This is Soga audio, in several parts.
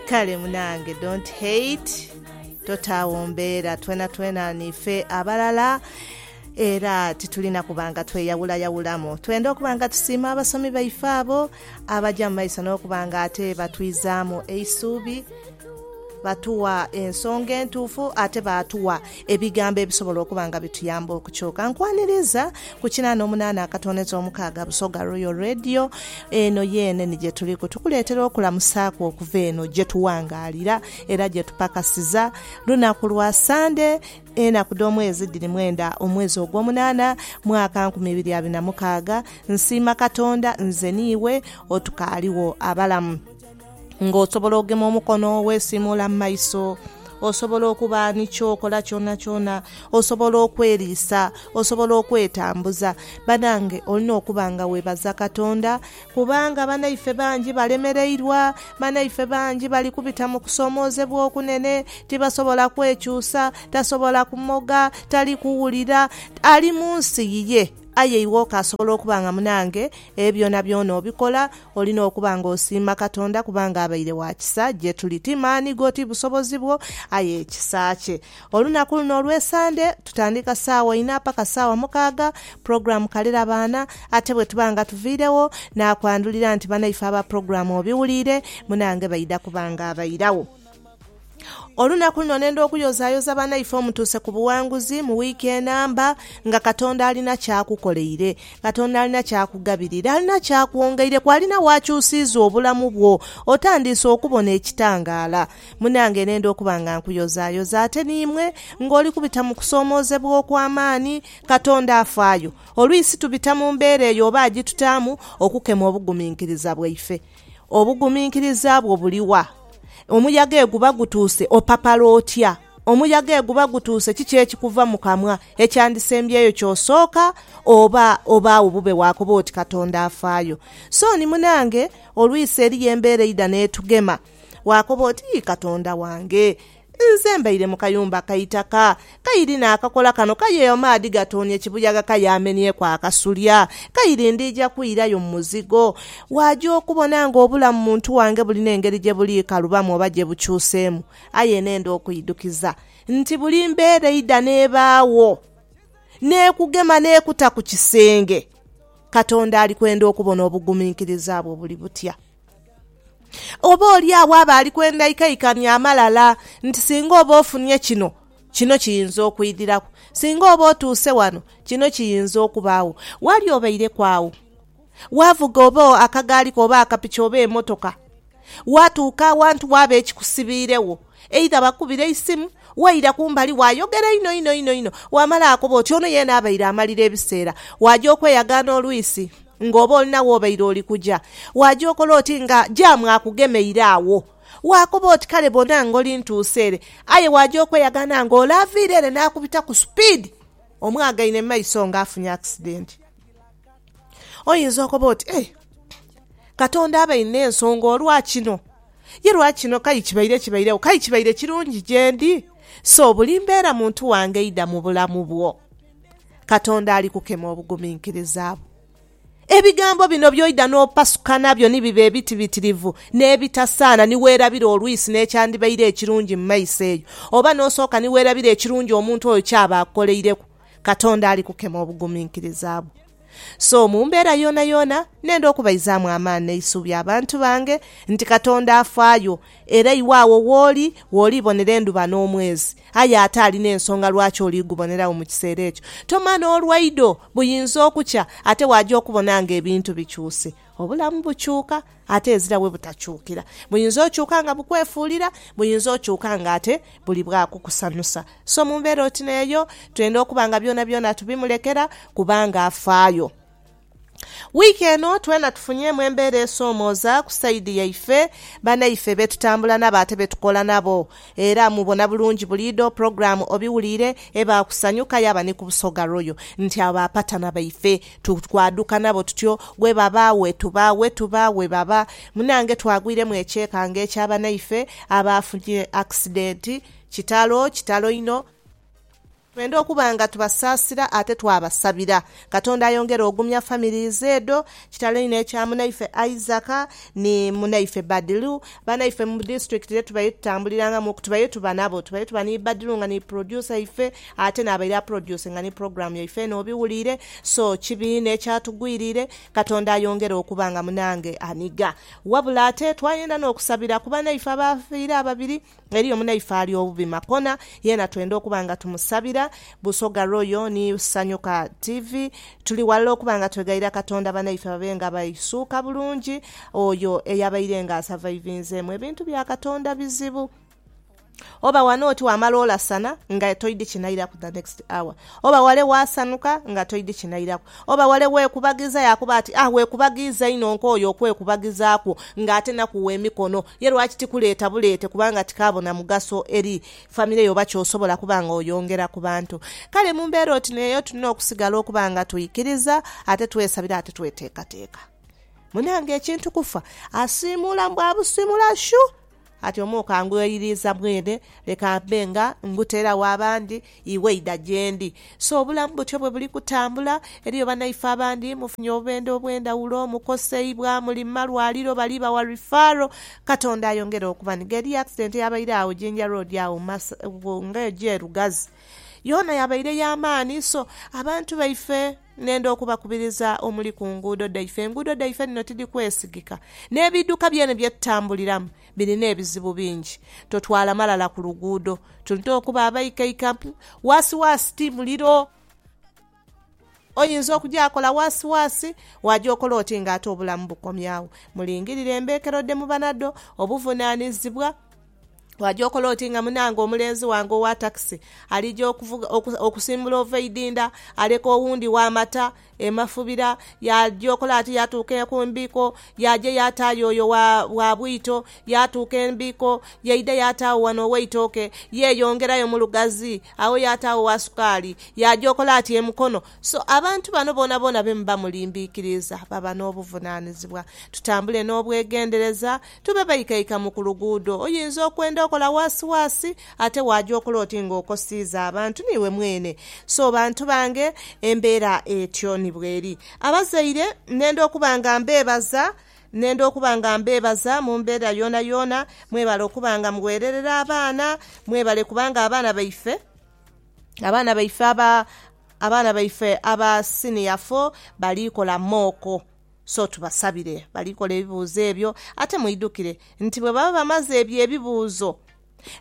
Kale munange don't hate totaawo mbeera twenatwena niife abalala era titulina kuba nga tweyawulayawulamu. Twenda okuba nga tusiima abasomi baife abo abaja mu maiso n'okuba nga ate batwizaamu eisuubi, batuwa ensonga entuufu ate baatuwa Ebigambo ebisobola okuba nga bituyamba okukyuka. Nkwaniriza ku kinaana omunaana akatoneza omukaaga Busoga Royal Radio. Eno yeene ni gye tuliku. Tukuleetera okulamusaaku okuva eno gye tuwangaalira era gye tupakasiza. Lunaku lwa Sande. Enaku dh'omwezi dhiri mwenda omwezi ogw'omunaana mwaka nkumi ibiri abiri na mukaaga. Nsiima Katonda nze niiwe otukaaliwo abalamu. ng'osobola ogema omukono weesiimuula mu maiso, osobola okuba ni ky'okola kyonakyona, osobola okweriisa, osobola okwetambuza. Banange olina okuba nga webaza Katonda kubanga banaife bangi balemereirwa, banaife bangi bali kubita mu kusoomoozebwa okunene, tibasobola kwekyusa, tasobola kumoga, tali kuwulira. Ali mu nsi yiye, aye iwe okaasobola okuba nga munange ebyo byonabyona obikola, Olina okuba nga osiima Katonda kubanga abaire wa kisa gye tuli. Ti maani go, ti busobozi bwo, aye kisa kye. Olunaku luno olw'e Sande, tutandika saawa inha paka saawa mukaaga pulogulaamu Kalira Baana. Ate bwe tuba nga tuviiregho, naakwandhulira nti banaife aba pulogulaamu obiwuliire, munange baidha kuba nga abairagho. Olunaku luno nenda okuyozayoza banaife omutuuse ku buwanguzi mu wiiki enamba nga Katonda alina kyakukoleire, Katonda alina kyakugabirire, alina kyakwongeireku, alina wakyusiiza obulamu bwo. Otandiise okubona ekitangaala. Munange nenda okuba nga nkuyozayoza ate niimwe nga oli kubita mu kusoomoozebwa okw'amaani. Katonda afaayo. Olwisi tubita mu mbeera eyo oba agitutaamu okukema obuguminkiriza bwaife. Obuguminkiriza bwo buli wa? Omuyaga eguba gutuuse, opapala otya? Omuyaga eguba gutuuse, kiki ekikuva mu kamwa ekyandisembyeyo ky'osooka oba obaagho bube waakoba oti Katonda afaayo? So ni munange, olwisi eriyo embeera eidha n'etugema, waakoba oti, Yii Katonda wange! Nze mbaire mu kayumba ka itaka. Kairi naakakola kano kaye amaadhi gatoonye kibuyaga kaye amenyeku akasulya. Kairi ndiija kwirayo mu muzigo. Waaja okubona ng'obulamu mu ntu wange bulina engeri gye buliikalubamu oba gye bukyuseemu. Aye nenda okwidhukiza nti buli mbeera eidha n'ebaagho n'ekugema n'ekuta ku kisenge, Katonda ali kwenda okubona obuguminkiriza bwo buli butya. Oba oli agho aba ali kwenda ikaikani amalala nti singa oba ofunye kino, kino kiyinza okwidhiraku, singa oba otuuse ghano, kino kiyinza okubaagho. Ghali obaireku agho, waavuga oba akagaali ko oba akapiki oba emotoka, waatuuka awantu waaba ekikusibiiregho. Eidha bakubira eisimu, waira kumbali waayogera inho inho inho inho waamala akoba oti ono yeena abaire amalira ebiseera. Waaja okweyagaana olwisi nga oba olina w'obaire oli kuja. Waaja okola oti nga jaamu akugemeire agho. Waakoba oti kale bona ngoli ntuuse ere. Aye waaja okweyagaana nga ole aviire ere n'akubita ku supiidi omwagaine mu maiso nga afunye akisidenti. Oyinza okoba oti, Ee, Katonda abainhe ensonga olwa kino. Ye lwa kino k'aye kibaire kibairegho? K'aye kibaire kirungi gyendi? So, buli mbeera muntu wange eidha mu bulamu bwo, Katonda ali kukema obuguminkiriza bwo. Ebigambo bino by'oidha n'opasuka nabyo ni biba ebitibitirivu n'ebitasaana ni weerabira olwisi n'ekyandibaire ekirungi mu maiso eyo, oba n'osooka ni weerabira ekirungi omuntu oyo ky'aba akukoleireku. Katonda ali kukema obuguminkiriza bwo. So mu mbeera yoonayoona nenda okubaizaamu amaani n'eisuubi abantu bange nti Katonda afaayo, era iwe agho wooli w'olibonera endhuba n'omwezi, aye ate ali n'ensonga lwaki oli guboneragho mu kiseera ekyo. Tomanha olwaido buyinza okukya ate waaja okubona ng'ebintu bikyuse. Obulamu bukyuka ate ezira we butakyukira. Buyinza okyuka nga bukwefuulira, buyinza okyuka nga ate buli bwa kukusanhusa. So mu mbeera oti n'eyo, twenda okuba nga byonabyona tubimulekera kubanga afaayo. Wiiki eno twena tufunyeemu embeera esoomooza ku sayidi yaife, banaife be tutambula nabo ate be tukola nabo. Era mubona bulungi buliidho pulogulaamu obiwuliire eba ku Sanyu ka yaaba ni ku Busoga Royal nti abo bapatana baife. Tu kwaduka nabo tutyo, ghebaba, wetuba, wetuba, ghebaba. Munange twagwiremu ekyekango ekya banaife abaafunye akisidenti. Kitalo, kitalo inho. Twenda okuba nga tubasaasira ate twabasabira. Katonda ayongere ogumya families edho. Kitalo inho ekya munaife Isaac ni munaife Badiru. Banaife mu district ye tubaire tutambulirangamu, tubaire tuba nabo. Tubaire tuba ni Badiru nga ni producer ife. Ate n'abaire aproducinga ni program yaife eno obiwuliire, so kibi inho ekyatugwiriire, Katonda ayongere okuba nga munange anigha. Wabula ate twayenda n'okusabira ku banaife abaafiire ababiri, eriyo munaife ali obubi makona, yeena twenda okuba nga tumusabira. Busoga Royal ni Sanyuka TV tuli ghalala okuba nga twegayirira Katonda banaife babe nga baisuuka bulungi. Oyo eyabaire nga asavaivinzeemu ebintu bya Katonda bizibu. Oba wano oti wamala olasana nga toidhi kinairaku the next hour. Oba wale wasanuka nga toidhi kinairaku. Oba wale wekubagiiza yakuba ati ah wekubagiiza inho nkooye okwekubagizakwo nga ate nakuwa emikono. Ye lwaki tikuleeta buleete kubanga tikaabo na mugaso eri famire yo oba kyosobola kuba nga oyongera ku bantu. Kale mu mbeera oti n'eyo tulina okusigala okuba nga twikiriza ate twesabira ate tweteekateeka. Munange ekintu kufa asiimuula mbu abusiimula shu! Ati omu kangweyiriiza mwene, leka mbe nga nguteera wa bandi, iwe idha gyendi. So obulamu butyo bwe buli kutambula. Eriyo banaife abandi mufunye obubendhe obw'endhawulo, mukoseibwa, muli mu malwaliro, bali bawa referral. Katonda ayongere okubanhiga. Eriyo accident eyabaire agho Jinja Road agho nga eja e Lugazi. Yoona yabaire ya maani. So abantu baife. Nenda okubakubiriza omuli ku nguudo dhaife. Enguudo dhaife dhino tidhikwesigika, n'ebiidhuka byene bye tutambuliramu birina ebizibu bingi. Totwala malala ku luguudo. Tulina okuba abaikaikampi. Waasiwaasi ti muliro. Oyinza okugyakola waasiwaasi, waagya okola oti ng'ate obulamu bukomye agho? Mulingirire embeekero dhe muba nadho, obuvunaanizibwa. Waja okola oti nga munange omulenzi wange owa takisi alija okuvuga okusimbula ova idinda aleka owundi wamata emafubira yaja okola ati yatuuka ekumbiko yaja yatayo oyo wa bwito yatuuka embiko yaida yatawo wano oweitoke yeyongerayo mulugazi agho yatawo owa sukaali yaja okola ati emukono so abantu bano bonabona bemuba mulimbikiriza baba nobuvunanizibwa tutambule nobwegendereza Tube baikaika mu ku luguudo. Oyinza okwenda okola waasiwaasi, ate waaja okola oti nga okosiiza abantu n'iwe mwene. So bantu bange, embeera etyo ni bweri. Abazaire, nenda okuba nga mbeebaza, nenda okuba nga mbeebaza mu mbeera yoonayoona. Mwebale okuba nga mugheererera abaana. Mwebale kubanga abaana baife, abaana baife aba, abaana baife aba siniya fo bali kola mooko. So tubasabire bali kola ebibuuzo ebyo. Ate mwidhukire nti bwe baba bamaze ebyo ebibuuzo,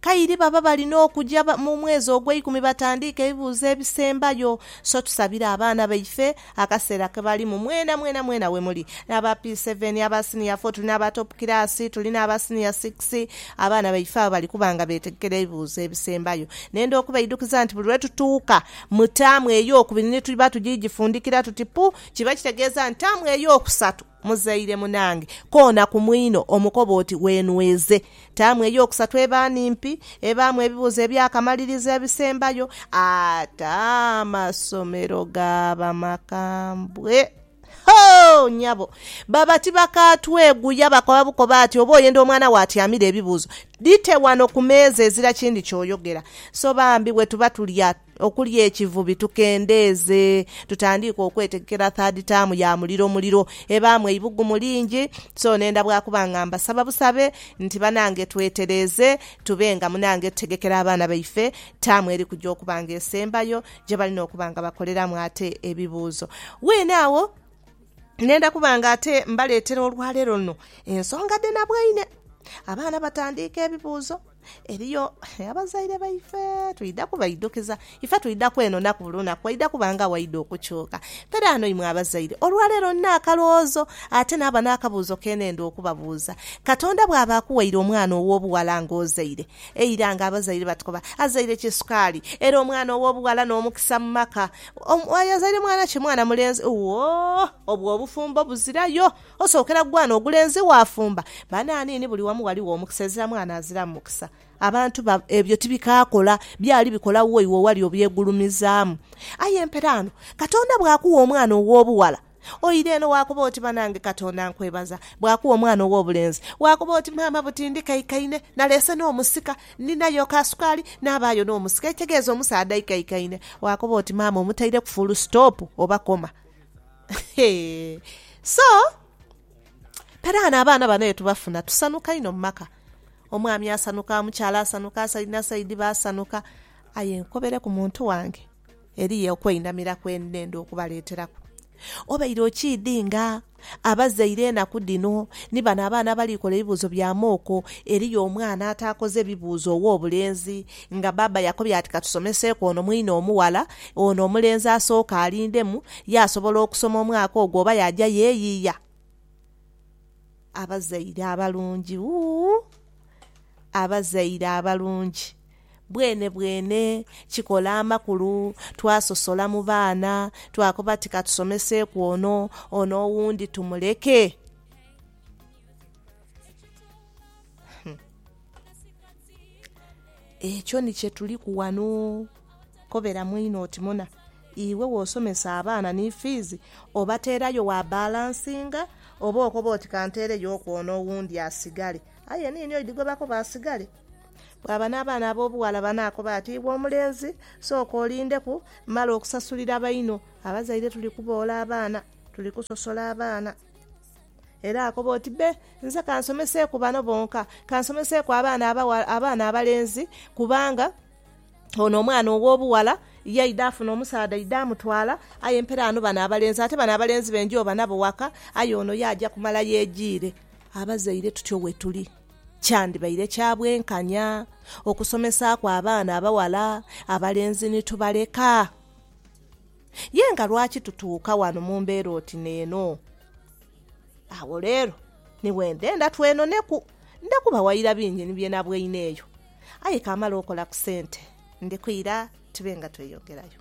kairi baba balina okuja mu mwezi ogweikumi batandiike ebibuuzo ebisembayo. So tusabire abaana baife akaseera ke balimu. Mwena mwena mwena we muli. N'aba P seven, aba siniya fo, tuli n'aba topu kiraasi, tuli n'aba siniya sikisi. Abaana baife abo bali kuba nga beetegekera ebibuuzo ebisembayo. Nenda okubaidukiza nti buli lwe tutuuka mu taamu ey'okubiri ni tuba tujiigifundikira tuti pu, Kiba kitegeeza nti taamu ey'okusatu muzaire munange koona ku mwino omukoba oti weenweze. Taamu ey'okusatu eba nimpi, ebaamu ebibuuzo eby'akamalirizo ebisembayo ate amasomero gaaba makambwe. Hoo! Nyabo, baba tibakaatweguya bakoba bukoba ati oba oyenda omwana wo atyamire ebibuuzo, dhite wano ku meeza ezira kindi ky'oyogera. So bambi bwe tuba tulya Okulya ekivubi tukendeeze tutandiike okwetegekera third term ya muliro muliro ebaamu eibugumu lingi so nenda bwakuba nga mbasaba busabe nti banange twetereeze tube nga munange tutegekera abaana baife term eri kuja okuba nga esembayo gyebalina okuba nga bakoleramu ate ebibuuzo weene agho nenda kuba nga ate mbaleetera olwaleero luno ensonga dhenabwaine abaana batandiike ebibuuzo. Eriyo abazaire baife twidha kubaidhukiza. Ife twidha kwenonaku buli lunaku, waidha kuba nga waidha okukyuka. Kale ano imwe abazaire, olwaleero nina akalowoozo ate naaba n'akabuuzo ke neenda okubabuuza. Katonda bw'aba akuwaire omwana ow'obughala ng'ozaire, eira ng'abazaire batukoba, azaire ki sukaali? Era omwana ow'obughala n'omukisa mu maka. Oyo azaire mwana ki? Mwana mulenzi? Wo! Obwo obufumbo buzirayo. Osookera ku gwaana ogulenzi waafumba. Banaaniini buli wamu ghaligho omukisa, ezira mwaana aziramu mukisa. Abantu ba, ebyo tibikaakola, byali bikola wo iwe owali obyegulumizaamu. Aye mperaano, Katonda bw'akugha omwana ow'obughala, oira eno waakoba oti, Banange Katonda nkwebaza. Bw'akugha omwana ow'obulenzi, waakoba oti, Maama buti ndikaikaine, naleese n'omusika, ndinayo ka sukaali, naabaayo n'omusika. Ekitegeeza omusaadha aikaikaine. Waakoba oti, Maama omutaireku fuulu sitoopu oba koma. So, peraghano abaana bano ye tubafuna tusanhuka inho mu maka. Omwami asanhuka, omukyala asanhuka, saidi na saidi basanhuka. Aye nkobereku muntu wange, eriyo okweinamira kwe ndenda okubaleeteraku. Obaire okiidhi nga abazaire enaku dhino ni bano abaana abali kola ebibuuzo bya mooko, eriyo omwana ataakoze bibuuzo ow'obulenzi, Nga baaba yakobye ati katusomeseeku ono mwine omughala, ono omulenzi asooke alindemu yaasobola okusoma omwaka ogwo oba yaaja yeeyiiya. Abazaire abalungi uu! Abazaire abalungi bwenebwene kikola amakulu. Twasosola mu baana, twakoba ti katusomeseeku ono, ono owundi tumuleke. Ekyo ni kye tuliku ghano. Koberamu inho oti muna iwe w'osomesa abaana ni fiizi obateerayo wa balansinga oba okoba oti ka nteereyooku ono owundi asigale. Aye niini oidhigobaku baasigale. Bwaba n'abaana ab'obughala banaakoba ati, Iwe omulenzi sooka olindeku mmale okusasulira baino. Abazaire tuli kuboola abaana, tuli kusosola abaana. Era akoba oti, Be, nze kansomeseeku bano bonka, kansomeseeku abaana abaghala, abaana abalenzi, kubanga ono omwana ow'obughala yaidha afuna omusaadha aidha amutwala, aye mperaanu bano abalenzi, ate bano abalenzi be njoba nabo waka, aye ono ye aja kumala yejiire. Abazaire tutyo wetuli. Kyandibaire kya bwenkanya okusomesaaku abaana abaghala abalenzi ni tubaleka? Ye nga lwaki tutuuka ghano mu mbeera oti n'eno? Agho leero ni bwe ndhenda twenoneku. Ndha kubawaira bingi ni bye nabweine eyo. Aye kamale okola ku sente ndi kwira tube nga tweyongerayo.